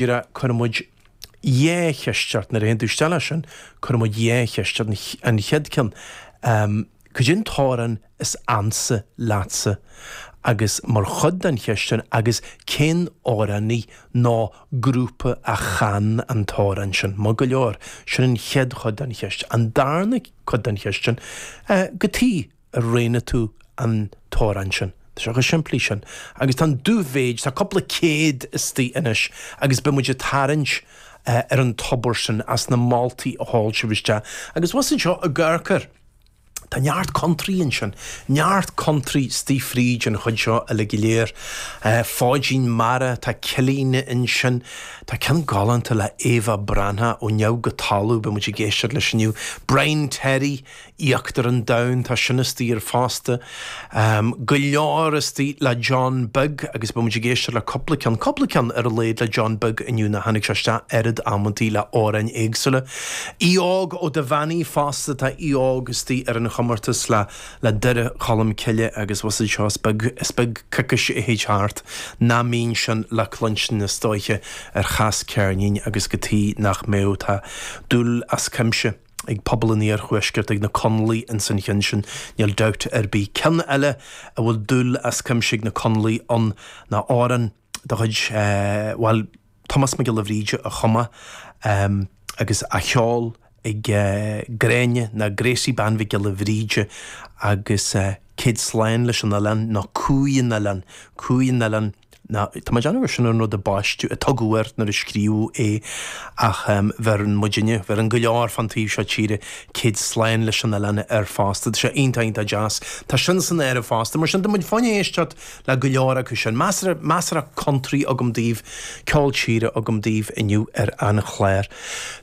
Mar cuireann muid dhá cheist ort, nuair a théann tú isteach ansin, cuireann muid dhá cheist ort. An chéad ceann, cad é an t-amhrán is ansa leatsa? Agus mar chuid den cheist sin, agus cén amhránaí nó grúpa a chan an t-amhrán sin? Maith go leor, sin an chéad chuid den cheist. An darna cuid den cheist sin, cad chuige. ar roghnaigh tú an t-amhrán sin. Tá sé chomh simplí sin. Agus tá an dubh-mhéid, tá cúpla céad istigh anois agus beidh muid ag tarraingt ar an tobar sin as na moltaí a sheol sibh isteach. Agus abhus anseo i gCaercar, tá neart country ansin, neart country istigh fríd an chuid seo uilig go léir. Fáidhín Mara, tá Cillín ansin, tá ceann galánta le Éabha Breathnach, Ó Neamh go Talamh, beidh muid ag éisteacht leis inniu. Brian Terry. Íochtar an Domhain. Tá sin istigh air fosta. Go leor istigh le John Beag agus beidh muid ag éisteacht le cúpla ceann, cúpla ceann ar a laghad le John Beag inniu nó tháinig sé isteach oiread amantaí le amhráin éagsúla. Aodh Óg Ó Duibheannaigh fosta, tá Aodh Óg istigh ar an chomórtas le le Doire Cholm Cille agus abhus anseo is beag, is beag coicís a thig thart nach mbíonn sin le cluinstin is dóiche ar Chas Ceirnín agus cad chuige nach mbeadh, tá dúil as cuimse. ag pobal an iarthuaiscirt, ag na Conallaigh ins an chionn sin, níl dabht ar bith. Ceann eile a bhfuil dúil as cuimse ag na Conallaigh ann ná amhrán de chuid, bhuel, Tomás Mac Giolla Bhríde a chum é agus á cheol ag Gráinne nó Gracie Bean Mhic Giolla Bhríde agus Céad Slán leis an Oileán, nó Cumhaidh an Oileáin, Cumhaidh an Oileáin. Tá mé ag déanamh gur sin an rud a baisteadh, a tugadh air nuair a scríobhadh é, ach bheireann muidinne, bheireann go leor fán taobh seo tíre, Céad Slán leis an Oileán air fosta. Tá sé iontach, iontach deas. Tá sin san áireamh fosta. Mar sin, tá muid chun éisteacht le go leor acu sin. Measartha, measartha country agam daoibh, ceol tíre agam daoibh inniu ar an chlár.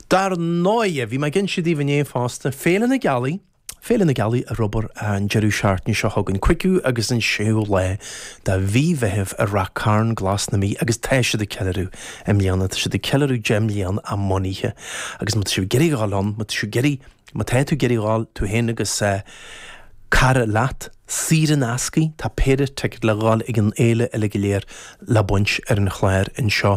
Dar ndóighe, bhí mé ag inse daoibh inné fosta, Féile na Gealaí, Féile na Gealaí ar obair an deireadh seachtaine seo chugainn, cúigiú agus an séú lá de mhí Mheithimh i Ráth Chairn Glas na Mí agus tá siad ag ceiliúradh i mbliana, tá siad ag ceiliúradh deich mbliana a mbunaithe agus má tá sibh ag iarraidh a ghabháil ann, má tá sibh ag iarraidh, má tá tú ag iarraidh a ghabháil, tú féin agus cara leat, saor in ascaidh, tá péire ticéad le ghabháil chuig an fhéile uilig go léir le baint ar an chlár anseo.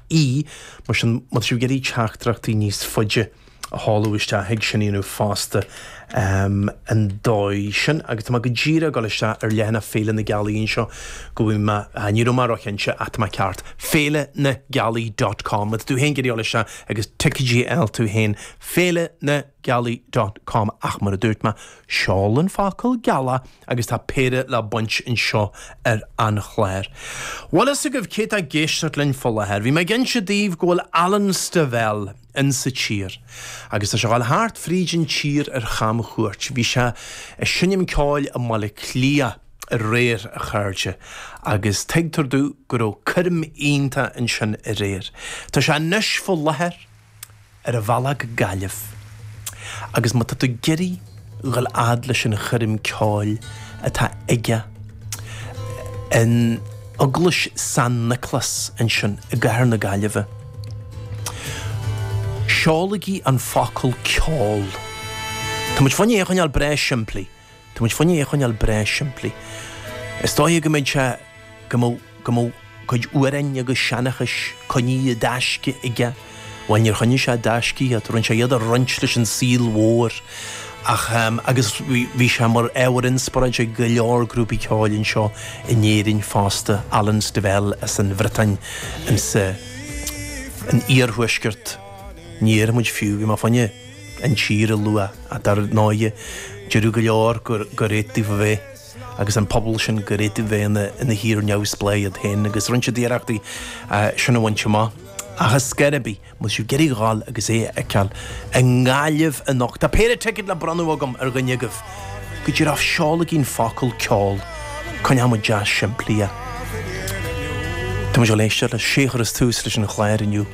ii, Mar sin, má tá sibh ag iarraidh teachtaireachtaí níos faide a sheoladh isteach, thig sin a dhéanamh fosta, an dóigh sin, agus tá mé go díreach ag dul isteach ar leathanach Féile na Gealaí anseo, go bhfeicfidh mé, ní raibh mé róchinnte, ach tá mé ceart, Féile na Gealaí dot com, má tá tú féin ag iarraidh dul isteach, agus ticéad a fháil tú féin, Féile na. gealaí dot com ach mar a dúirt mé, seol an focal geala agus tá péire le baint anseo ar an chlár. Bhfuil a fhios agaibh cé tá ag éisteacht linn faoi láthair. Bhí mé ag inse daoibh go bhfuil Alan Stivell in sa tír agus tá sé ag dul thart fríd an tír ar chamchuairt. Bhí sé ag seinm ceoil i mBaile Átha Cliath aréir a chairde agus tuigtear domh go raibh coirm iontach ansin aréir. Tá sé anois faoi láthair. ar a bhealach go Gaillimh agus má tá tú ag iarraidh a dhul a fhad leis an choirm ceoil atá aige in Eaglais San Nioclás ansin i gcathair na Gaillimhe, seolaigí an focal 'ceol'. Tá muid fá choinne é a choinneáil breá simplí. Tá muid fá choinne é a choinneáil breá simplí. Is dóigh go mbeidh sé, go mbeadh, go mbeadh cuid amhráin agus seanchais coinnithe i dtaisce aige. Bhuel, níor choinnigh sé i dtaisce iad, rinne sé iad a roinnt leis an saol mhór. Ach, agus bhí, bhí sé mar ábhar inspioráide ag go leor grúpaí ceoil anseo in Éirinn fosta, Alan Stivell as an Bhriotáin, an sa, an iarthuaisceart, ní déarfaidh muid fiú, bhí mé fá choinne, an tír a lua, ach dar ndóigh, déarfadh go leor gur cheart daofa a bheith, agus an pobal sin, gur cheart daofa a bheith ina thír neamhspleách iad féin, agus rinne siad iarracht é sin a bhaint amach. Ach ar scor ar bith, má tá sibh ag iarraidh dhul agus é a fheiceáil i nGaillimh anocht. Tá péire ticead le bronnadh agam ar dhuine agaibh, go díreach seolaigí an focal, ceol, coinneoidh muid deas simplí é. Tá muid ag éisteacht leis, sé a chuirfeas tús leis an chlár inniu.